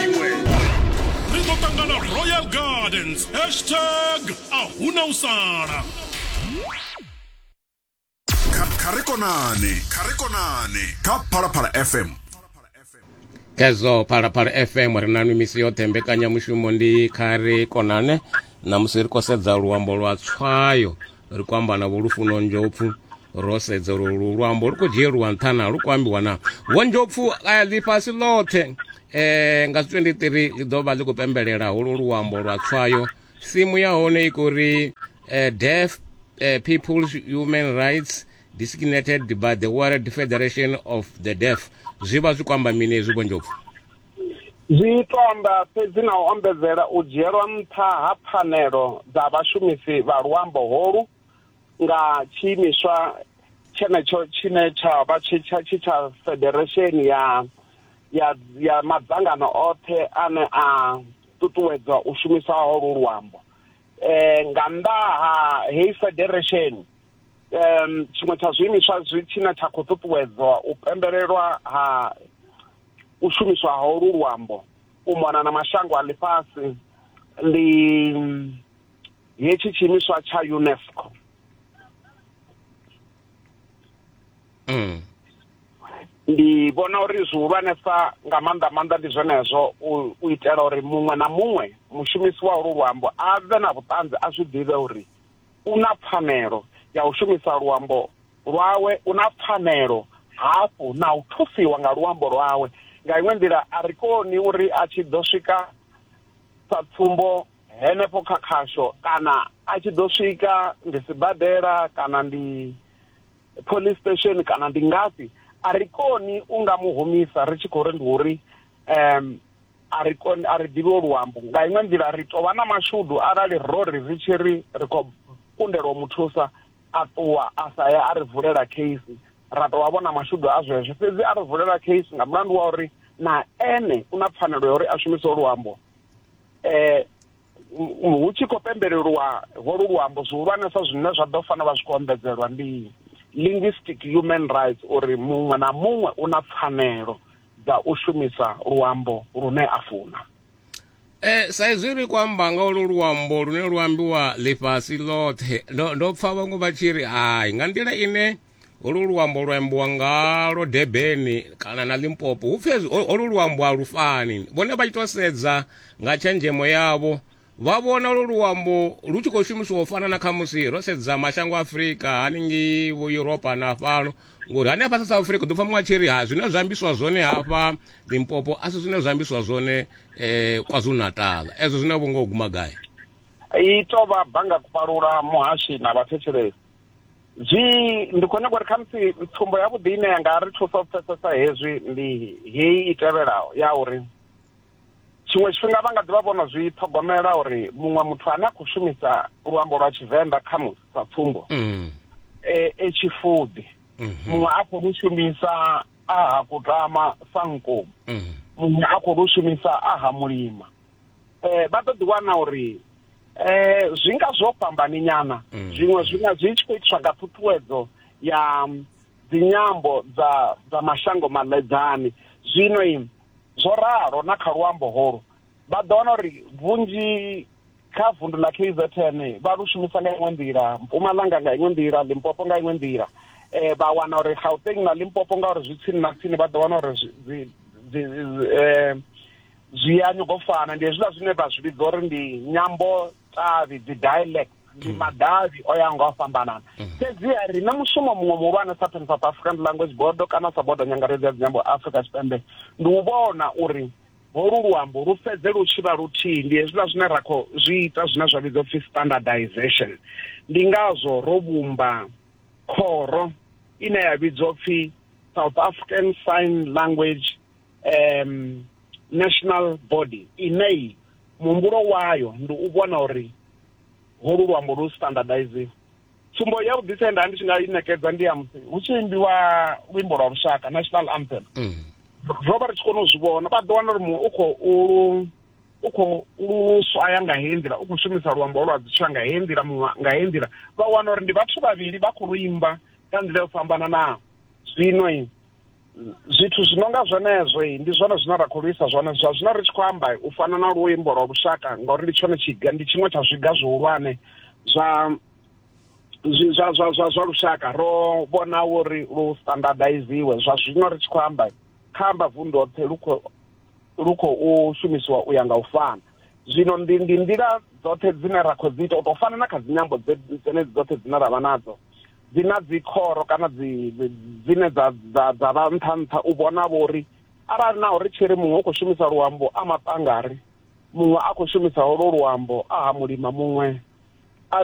iwe ri ḓo ṱangana royal gardens hashtag a huna u sala kha ri konane kha ri konane kha phalaphala fm khezwo phalaphala fm ri na nwi misi yoṱhe mbekanyamushumo ndi kha ri konane namusi ri khou sedza luambo lwa tswayo ri khou amba na vho lufuno nzhopfu ro sedza uri lu luambo lu khou dzhieliwa nṱha na lu khou ambiwa na vho nzhopfu ḽifhasi ḽoṱhe um nga 23 ḽi ḓo vha ḽi khou pembelela holu luambo lwa tswayo simu ya hone i khou ri um deaf uh, people's human rights designated by the world federation of the deaf zwi vha zwi khou amba mini hezwi vho nzhopfu Zwiṱoḓa fhedzi na u ombedzela u dzhielwa nṱha ha pfanelo dza vhashumisi vha luambo holu nga tshiimiswa tshenetsho tshine tsha vha tshi tsha tshi tsha federesheni ya ya ya madzangano oṱhe ane a ṱuṱuwedza u shumiswa ha lu luambo eh nga nnḓa ha heyi federesheni um tshiṅwe tsha zwiimiswa zwi tshine tsha khou ṱuṱuwedzwa u pembelelwa ha u shumiswa ha olu luambo u mona na mashango a ḽifhasi ndi hetshi tshiimiswa tsha UNESCO mm. ndi vhona uri zwihulwanesa nga maanḓa maanḓa ndi zwenezwo u itela uri muṅwe na muṅwe mushumisi wa olu luambo a vhe na vhuṱanzi a zwi ḓivhe uri u na pfanelo ya u shumisa luambo lwawe, u na pfanelo hafhu na u thusiwa nga luambo lwawe. Nga iṅwe nḓila, a ri koni uri a tshi ḓo swika sa tsumbo henefho kha khasho kana a tshi ḓo swika ndi sibadela kana ndi police station kana ndi ngafhi a ri koni u nga mu humisa ri tshi khou ri ndi uri um a ri koni a ri ḓivhi o luambo nga iṅwe nḓila ri tou vha na mashudu arali ro ri ri tshi ri ri khou kundelwa u mu thusa a ṱuwa a sa ya a ri vulela case ra tou vha vhona mashudu a zwezwo fhedzi a ri vulela case nga mulandu wa uri na ene u na pfanelo ya uri a shumise ho luambo um hu tshi khou pembelelwa holu luambo zwihulwanesa zwine zwa ḓo fanela vha zwi khou ombedzelwa ndi linguistic human rights uri muṅwe na muṅwe u na pfanelo dza u shumisa luambo lune a funa Eh sa izwi ri khou amba nga ulu luambo lune lu ambiwa ḽifhasi ḽoṱhe ndo ndo pfha vhaṅwe vha tshi ri hai nga nḓila ine ulu luambo lwa ambiwa ngalo debeni kana na limpopo hu pfi olu luambo a lu fani vhone vha tshi tou sedza nga tshenzhemo yavho vha vhona lu luambo lu tshi khou shumisiwa u fana na kha musi ro sedza mashango a afurika haningei vho yuropa na fhano ngori hanefha sa south africa ḓo pfa muṅwe a tshi ri ha zwine zwa ambiswa zwone hafha limpopo a si zwine zwa ambiswa zwone um kwazulu natala ezwo zwine vho ngo guma gai i to vha banga kupalula muhashi na vhathetshelesi zwi ndi khou nyanga uri khamusi tsumbo yavhuḓi ine ya nga ri thusa u pfesesa hezwi ndi heyi i tevhelaho ya uri Tshiṅwe tshifhinga vha nga ḓi vha vho no zwi ṱhogomela uri muṅwe muthu ane a khou shumisa luambo lwa Tshivenḓa kha musi sa tsumbo mm. e, e tshifuḓi mhm. muṅwe a khou lu shumisa a ha kutama sa nkomu mhm. muṅwe a khou lu shumisa a ha mulima um vha ḓo ḓi wana uri eh zwi nga zwo fhambani nyana mm. zwiṅwe zwi nga zwi tshi khou itiswa nga ṱhuṱhuwedzo ya dzinyambo dza dza mashango maḽedzani zwino Zwo ralo na kha luambo holu vha ḓo wana uri vhunzhi kha vundu ḽa KZN vha lu shumisa nga iṅwe nḓila Mpumalanga nga iṅwe nḓila Limpopo nga iṅwe nḓila eh vha wana uri Gauteng na Limpopo ngauri zwi tsini na tsini vha ḓo wana uri zwi zwi eh zwi ya nyogofana ndi hezwiḽa zwine vha zwi vhidza uri ndi nyambo tavhi dzi dialect ndi madavhi o ya nga o fhambanana mm. fhedziha ri na mushumo muṅwe muhulwane sa pan south african language board kana sa bodo nyangaredzi ya dzinyambo afrika tshipembe ndi u vhona uri holu luambo lu fhedze lu tshi vha luthihi ndi hezwiḽa zwine ra khou zwi ita zwine zwa vhidzwa upfhi standardization ndi ngazwo ro vhumba khoro ine ya vhidzwa upfhi south african sign language um, national body inei muhumbulo wayo ndi u vhona uri holu luambo lu standardize tsumbo ya vhuḓisa ye nda ndi tshi nga i ṋekedza ndi ya musi hu tshi imbiwa luimbo lwa lushaka national anthem mm. ro vha ri tshi kona u zwi vhona vha ḓo wana uri muṅwe u khou lu u khou lu swaya nga heyi nḓila u khou shumisa luambo lwa dzitswa nga heyi nḓila muṅwe nga heyi nḓila vha wana uri ndi vhathu vhavhili vha khou lu imba nga nḓila yo fhambananaho zwino zwithu zwi no nga zwenezwo ndi zwone zwine ra khou lwisa zwone zwa zwino ri tshi khou amba u fana na luimbo lwa lushaka ngauri ndi tshone tshiga ndi tshiṅwe tsha zwiga zwihulwane zwa zwa zwa zwa zwa lushaka ro vhona uri lu standardiziwe zwa zwino ri tshi khou amba kha amba vundu hoṱhe lu khou lu khou shumisiwa u ya nga u fana zwino ndi ndi nḓila dzoṱhe dzine ra khou dzi ita u tou fana na kha dzinyambo dzenedzi dzoṱhe dzine ra vha nadzo dzi na dzikhoro kana dzi dzine dza dza dza vha nṱha nṱha u vhona vhori arali naho ri tshi ri muṅwe u khou shumisa luambo a maṱangari muṅwe a khou shumisa holwo luambo a ha mulima muṅwe a